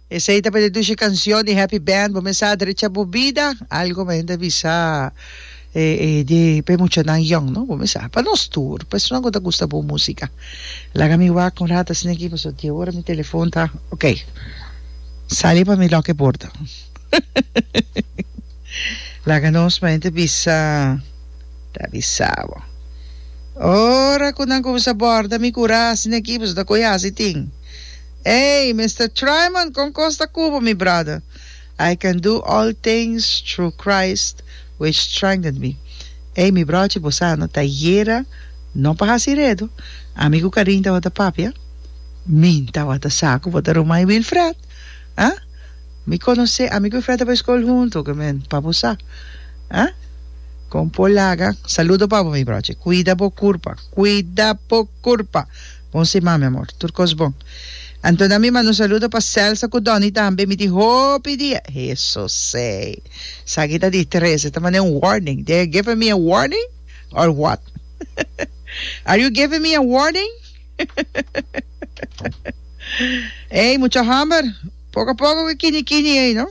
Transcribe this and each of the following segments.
Esei ta p'e dushi kansyon di Happy Band, Bo Mester Adrecha Bo Bida, algu me hende a bisa di p'e muchanan yòn, no? Bo mester, pa nos tur persona ku ta gusta bon músika. Laga mi wak un rat asina aki pasobra di ora mi telefon ta, ok, sali pa mi lòk e porta. Laga nos me hende bisa, ta bisa bo. Ora ku nan kuminsa bòrda mi ku rat asina aki, pasobra ta koyo hasi tin. Ey, Mister Triman, con cos ta cu bo, mi brother? I can do all things through Christ which strengthened me. Ey, mi brochi, bo sa, no ta yera, no pa haci redo. Ami cu Karin tawata papia. Min tawata sa cu bo ta ruma y Wilfred. Ah? Mi conoce, ami cu Wilfred ta pa e school hunto, oca men, pa bo sa. Ah? Con por laga. Saludo pa bo, mi brochi. Cuida bo curpa. Cuida bo curpa. Bon sima mi amor. Tur cos bon. Anto na mi manda un saludo pa Celsa cu Donny tambe. Mi tin hopi dia. Hesusee. Esaki ta di tres. E ta manda un warning. They're giving me a warning or what? Are you giving me a warning? Ey, mucha hamber. Poco a poco cu kini kini ey, no?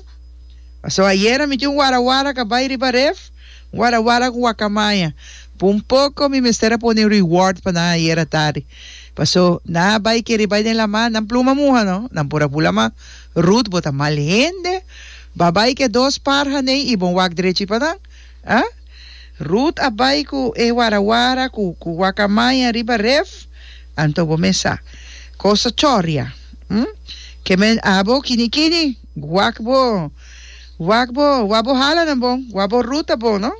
Paso ayera mi tin un wara wara ca bay riba ref. Wara wara cu wacamaya. Por un poco mi mester a pone reward pa nan ayer a tardi. Paso nan a bay keri bay den lama, nan pluma muha no. Nan por a pula ma, Ruth bo ta mal hende. Ba bay cu e dos par haney y bon wak drechi pa nan. Ah? Ruth a bay cu e wara wara cu cu wacamaya riba ref. Anto bo mes sa. Cos ta choria. Hm? Ke men abo kini kini. Wak bo. Wak bo, wak bo hala nan bon, wak bo ruta bon no.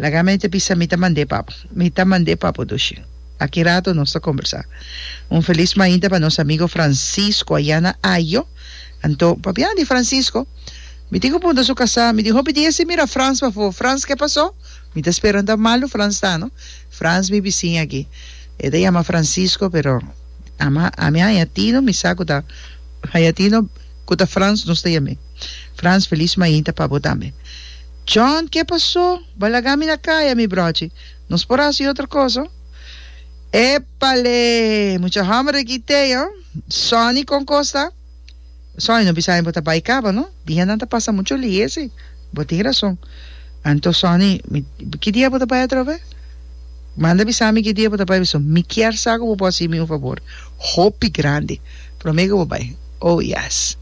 Laga mi ta bisa mi ta mand'é pa bo, mi ta mand'é pa bo dushi. Aki rato nos ta kombersá. Un felis mainta pa nos amigo Francisco ayá na Ajo. Anto, pabia di Francisco? Mi tin ku punta su kasá, mi tin hopi dia si mira Frans pafó. Frans ke pasó? Mi ta spera unda malu Frans ta no. Frans mi bisin aki. E ta yama Francisco pero ama ami haña tino mi sa ku ta haña tino. Ku ta Frans nos ta yam'é. Frans felis mainta pa botame. John, ke pasó? Bo a lagami na kaya, mi brochi. Nos por hasi otro kos, ho. Epale! Mucha hòmber e kité, ho. Sonny kon kos ta? Sonny, no bisaña bo ta bai kaba, no? Dia nan ta pasa mucho lihe, si. Bo tin rason. Anto, Sonny, mi, ki dia bo ta bai atrobe? Manda bisami ki dia bo ta bai. Mi kier sa ku bo por hasi mi un fabor hopi grandi. Prome ku bo bai. Oh yes.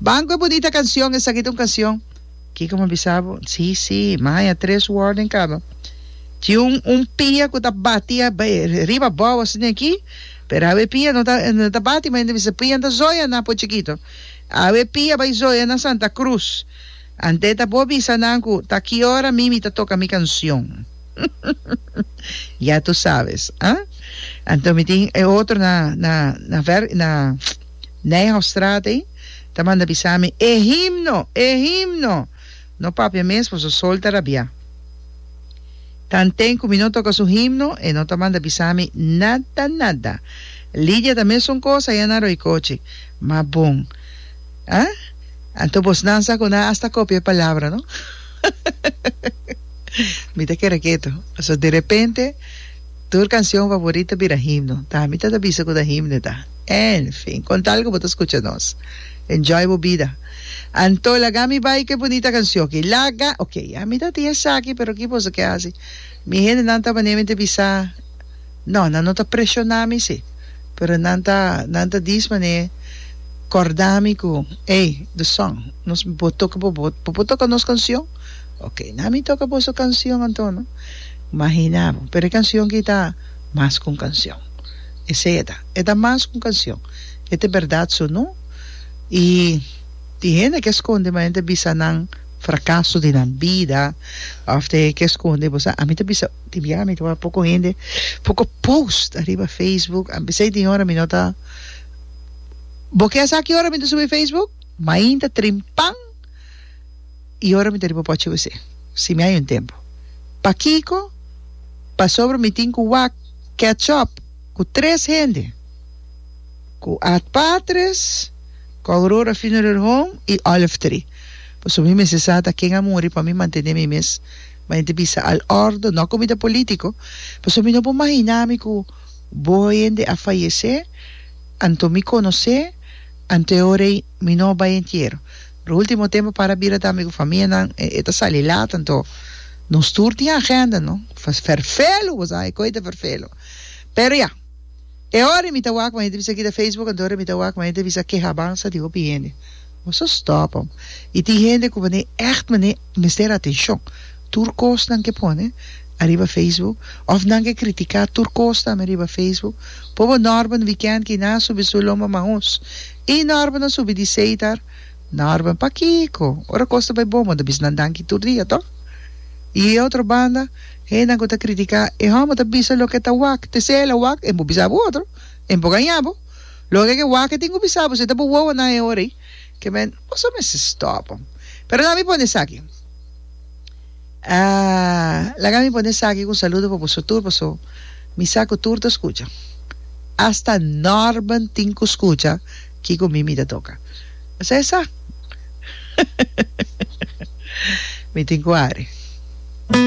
Banco e bunita cancion esaki ta un cancion. Kiko mi bisa bo? Si si. Maya tres word den cama. Tin un un pia ku ta bati riba abou asina aki pero awe e pia no ta no ta bati maya ta bisa pian ta zoya nan por chikito. Awe e pia bai zoya na Santa Cruz. Ante ta bo bisa nan ku ta ki ora mi mi ta toka mi cancion. Ya tu sabes, a. Anto mi tin e otro na na na ver na Nijhoffstraat ei ta manda bisa mi, E himno! E himno! No papia mes for su sol ta rabia. Tanten ku mi no toka su himno e no ta manda bisa mi nada nada. Lidia ta mesun kos aya na Roikochi. Ma bon. A. Anto bosnan sa ku nan asta kopia e palabra, no? Mi ta kere keto. So de repente tur canción favorito bira himno. Ta mi ta ta bisa cu ta himno ta. En fin, con tal cu bo ta scucha nos. Enjoy bo bida. Anto, laga mi bai cu e bunita canción aki. Laga! Ok, ya mi ta tin esaki pero ki boso ke haci? Mi hendenan ta manera mi ta bisa. No, nan no ta preshoná mi sí, pero nan ta nan ta dis man'é kòrdá mi ku, Ey, The Song, nos bo toka bo bo bo por toka nos kansion? Oke, na mi toka boso kansion antono. Mahina bo, pero e kansion ki ta mas ku un kansion. Esei e ta, e ta mas ku un kansion. E ta e bèrdat su no. I tin hende ke skonde manera nan ta bisa nan frakaso di nan bida òf te ke skonde bo sa, ami ta bisa. Di biaha mi tabata poko hende, poko post ariba Facebook. A bisai tin ora mi no ta Bo ke sa ki ora mi ta subi Facebook? Mainta trimpan i ora mi ta riba pochi wc. Si mi hay un tempu. Pakiko? Pasobra mi tin ku wak catch up ku tres hende, ku Ad Patres, ku Aurora Funeral Home i Olive Tree. Pasobra mi mester sa ta ken a muri pa mi mantene mi mes. Ma ente bisa al ordo no comida politico pasobra mi no por mahiná mi cu bo hende a fayecé anto mi conocé anto e ora ei mi no bay entiero pero ultimo tempo para bira tambe cu famianan e ta sali laat anto nos tur tin agenda no vervelu bo sa e coe ta vervelu pero ya e ora ei mi ta wak ma ente bisa kita facebook anto e ora ei mi ta wak ma ente bisa kehabansa di hopi hende. Nos a stòp'am. I tin hende ku manei ègt manei mester atenshon. Tur kos nan ke pone ariba facebook òf nan ke kritiká tur kos tambe ariba facebook. Pobo Norben Weekend ki na subi su lomba maus. I Norben a subi di seitar. Norben, pakiko? Ora kos ta bai bon bo ta bisa nan danki tur dia tò? I e otro banda hendenan ku ta kritiká e hòmber ta bisa loke ta wak. Te sey el a wak e por bisa bo otro. E por gaña bo. Lo ke ke waka tin ku bisa bo si ta bo wowonan e ora ei ke men boso mester stop pero lami pone esaki ah laga mi pone esaki ku saludo pa boso tur paso mi sa ku tur ta skucha hasta Norman tin ku skucha kiko mi mi ta toka esa esa mi tin ku ari.